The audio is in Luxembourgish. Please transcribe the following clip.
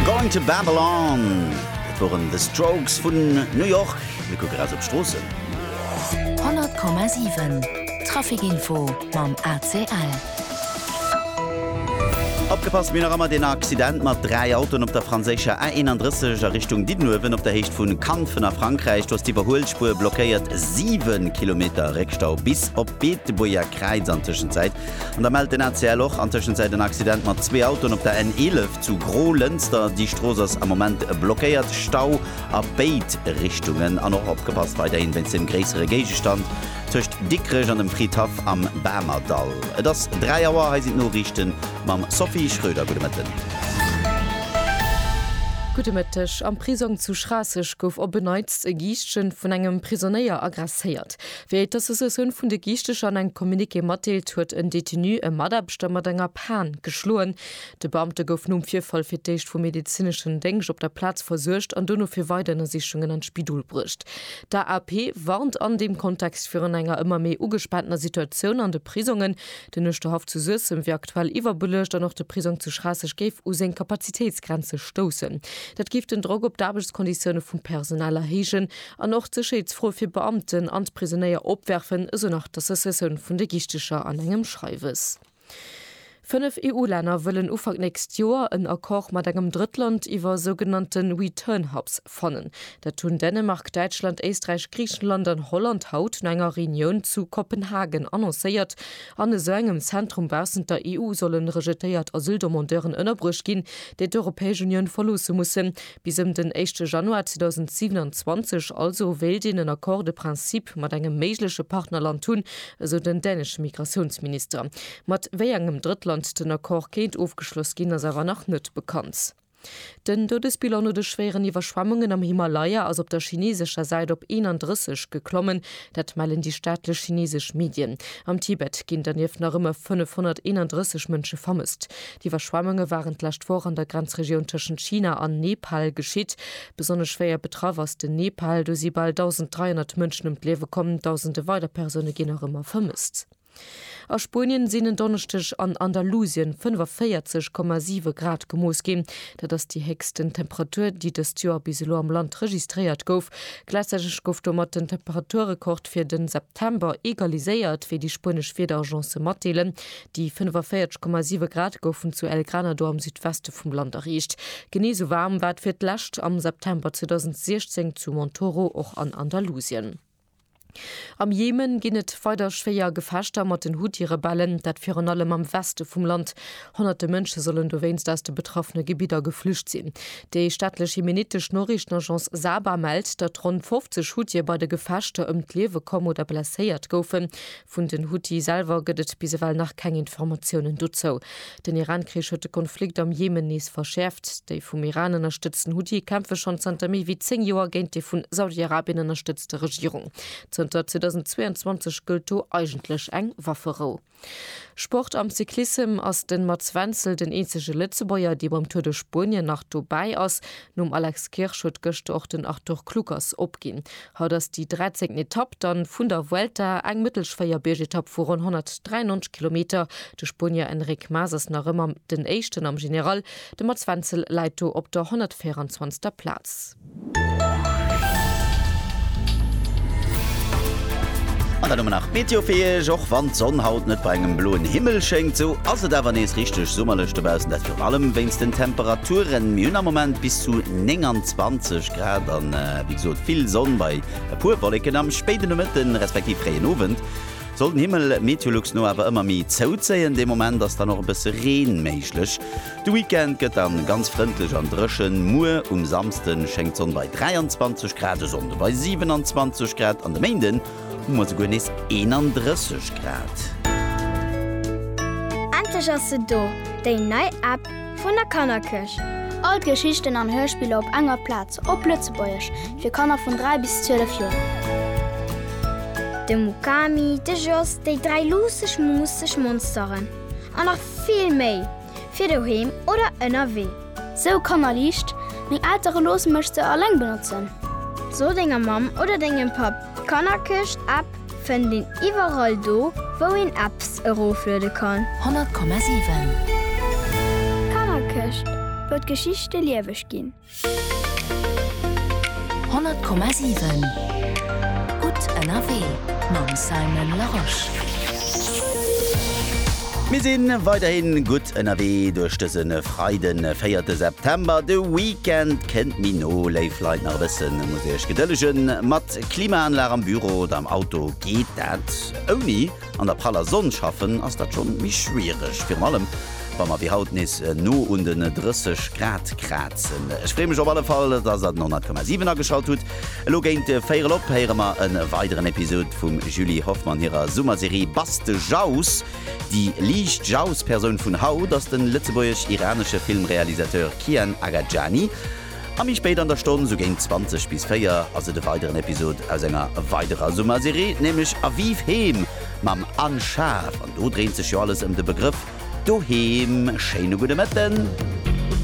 Going to Babylon, dat woren The Strokes vun New York. Mir kucken raus op d'Stroossen. 100,7 Trafic Info mam ACL. Opgepasst, mir hunn nach ëmmer deen Accident mat 3 Autoen op der franséischer A 31 a Richtung Diddenuewen op der Héicht vu Kanfen a Frankräich. Do ass d'Iwwerhuelspuer blockéiert, 7 Kilometer Réckstau bis op d'Beetebuerger Kräiz an Tëschenzäit. An da mellt den ACL och an Tëschenzäit en Accident mat zwee Autoen op der N11 zu Gro-Lënster. Déi Strooss ass am Moment blockéiert, Stau a béid Richtungen. An och opgepasst weiderhin wéinst dem gréissere Géigestand tëscht Dikrech an dem Fridhaff am Bamerdall. Et ass 3 Auer, hei sinn d'Noriichten mam Sophie Schröder. Gudde Mëtten. Gudde Mëtteg. Am Prisong zu Schraasseg gouf op en Neits e Giischtchen vun engem Prisonéier aggresséiert. Wéi d'Associatioun vun de Giichteger an engem Communiqué matdeelt, huet en Detenu e Mataarbechter mat enger Pan geschloen. De Beamte gouf nom Virfall fir d'éischt vum medezineschen Déngscht op der Plaz versuergt an dono fir weider Ënnersichungen an d'Spidol bruecht. D'AAP warnt an deem Kontext virun enger ëmmer méi ugespaantener Situatioun an de Prisongen. Den Uerschterhaff zu Suessem wier aktuell iwwerbeluecht an och de Prisong zu Schraasseg géif u seng Kapazitéitsgrenze stoussen. Dat géif den Drock op d'Aarbechtskonditioune vum Personal erhéijen An och d'Sécherheetsfro fir d'Beamten an d'Prisonéier opwerfen, esou nach d'Associatioun vun de Gichtecher an engem Schreiwes. Fënnef EU-Länner wëllen Ufank nächst Joer en Accord mat engem Drëttland iwwer sougenannte Return Hubs fannen. Dat hunn Dänemark, Däitschland, Éisträich, Griichenland an Holland haut no enger Reunioun zu Kopenhagen annoncéiert. An esou engem Zentrum baussent der EU solle rejetéiert Asyldemandeuren ënnerbruecht ginn, déi d'Europäesch Unioun verloosse mussen, Bis ëm den éischte Januar 2027 also wéilt een en Accord de principe mat engem méigleche Partnerland hunn, esou den dänesche Migratiounsminister. Mat wéi engem Drëttland den Accord kéint ofgeschloss ginn, ass awer nach net bekannt. Den Doudesbilan no de schwéieren Iwwerschwemmungen am Himalaya ass op der chineesescher Säit op 31 geklommen. Dat mellen déi staatlech chinesesch Medien. Am Tibet ginn dernieft nach ëmmer 531 Mënsche vermësst. D'Iwwerschwemmunge waren d'lescht Woch an der Grenzregioun tëschent China an Nepal geschitt. Besonnesch schwéier betraff ass den Nepal. Do si bal 1.300 Mënschen ëm d'Liewe komm, dausende weider Persoune ginn nach ëmmer vermësst. A Spuenien sinn en Donneschdeg an Andalusien 45,7 Grad gemooss ginn. Dat ass déi héchsten Temperatur, déi dëst Joer bis elo am Land registréiert gouf. Gläichzäiteg gouf domat den Temperaturrekord fir de September egaliséiert, wéi déi spuenesch Wiederagence matdeelen. Déi 45,7 Grad goufen zu El Granado am Südweste vum Land erreecht. Genee sou waarm war et fir d'lescht am September 2016 zu Montoro, och an Andalusien. Am Jemen ginn et weider schwéier Gefechter mat den Huthi-Rebellen, dat virun allem am Weste vum Land. Honnerte Mënsche sollen dowéinst aus de betraffene Gebidder geflücht sinn. Déi staatlech jemenittesch Noriichtenagence Saba mellt, datt ronn 50 Huthie bei de Gefechter ëm d'Liewe komm oder blesséiert goufen. Vun den Huthi selwer gëtt et bis ewell nach keng Informatiounen dozou. Den Iran-Krich huet de Konflikt am Jemen nees verschäerft. Déi vum Iran ënnerstëtzten Huthi kämpfe schonn zanter méi wéi 10 Joer géint déi vun Saudi-Arabien ënnerstëtzte Regierung. Zënter 2022 gëllt do eigentlech eng Wafferou. Sport Am Cyclissem ass de Mats Wenzel den eenzege Lëtzebuerger, dee beim Tour de Spuenien nach dobäi ass. Nom Alex Kirsch huet gëschter och den Arthur Kluckers opginn. Haut ass déi dräizéngten Etapp dann vun der Vuelta, eng mëttelsch Véierbiergetapp vu ronn 193 Kilometer. De Spuenier Enric Mas ass nach ëmmer den Éischten am General, de Mats Wenzel läit do op der 124. Plaz. An dann hu mer nach d'Meteo fir Iech. Och wann d'Sonn haut net bei engem bloen Himmel schéngt, esou ass et awer nees richteg summerlech dobaussen, dat virun allem wéinst den Temperaturen. Mir hunn am Moment bis zu 29. Grad an wéi gesot vill Sonn bei e puer Wolleken am spéiden Nomëtte respektiv fréien Owend soll den Himmel Meteolux no awer ëmmer méi zouzéien. Dee Moment ass dann och e bësse Reen méiglech. De Weekend gëtt dann ganz frëndlech an dréchen. Muer um Samsden schéngt d'Sonn bei 23 Grad, de Sonnde bei 27 Grad an de Méinden hu mer souguer nees 31 Grad. Endlech ass se do, déi nei App Vun der Kannerkirch. All d'Geschichten an Hörspiller op enger Plaz, op Lëtzebuergesch, fir Kanner vun 3 bis 12 Joer. De Mukami, de Jos, déi dräi luusseg, muusseg Monsteren an nach vill méi, fir doheem oder ënnerwee. Sou kannerliicht, meng Eltere loosse mech se alleng benotzen. So denger Mamm oder dengem Papp d'Kannerkirch-App. Fënnt een iwwerall do wou een Apps erofluede kann. 100,7. D'Kannerkëscht, wou d'Geschichte lieweg ginn. 100,7. Gutt ënnerwee mam Simon Larosche. Mir si weiderhi gutt ënnerwee duerch dëse Freiden, 4 September. De Weekend kënnt, méi no, léif Leit. Nach e bësse muss ee lech gedëllegen. Mat Klimaanlag am Büro oder am Auto geet dat. Ouni an der praller Sonn schaffen ass dat schonn méi schwiereg, virun allem wa mer wéi haut nees no un den 30 Grad krazen. Ech free mech op alle Fall, dass der den 100,7 ageschalt hutt. Elo géint véierel op héiere mer e weideren Episod vum Julie Hoffmann hirer Summerserie Buzz de Jaus. Déi liicht Jaus-Persoun vun haut ass de lëtzebuergesch-iranesche Filmrealisateur Kian Agajani. A méi spéit an der Stonn, sou géint 20 bis 4, ass et e weideren Episod aus enger weiderer Summerserie, nämlech A Vive Heem mam Anne Schaaf. An do dréint sech jo alles ëm de Begrëff Doheem. Schéine gudde Mëtten.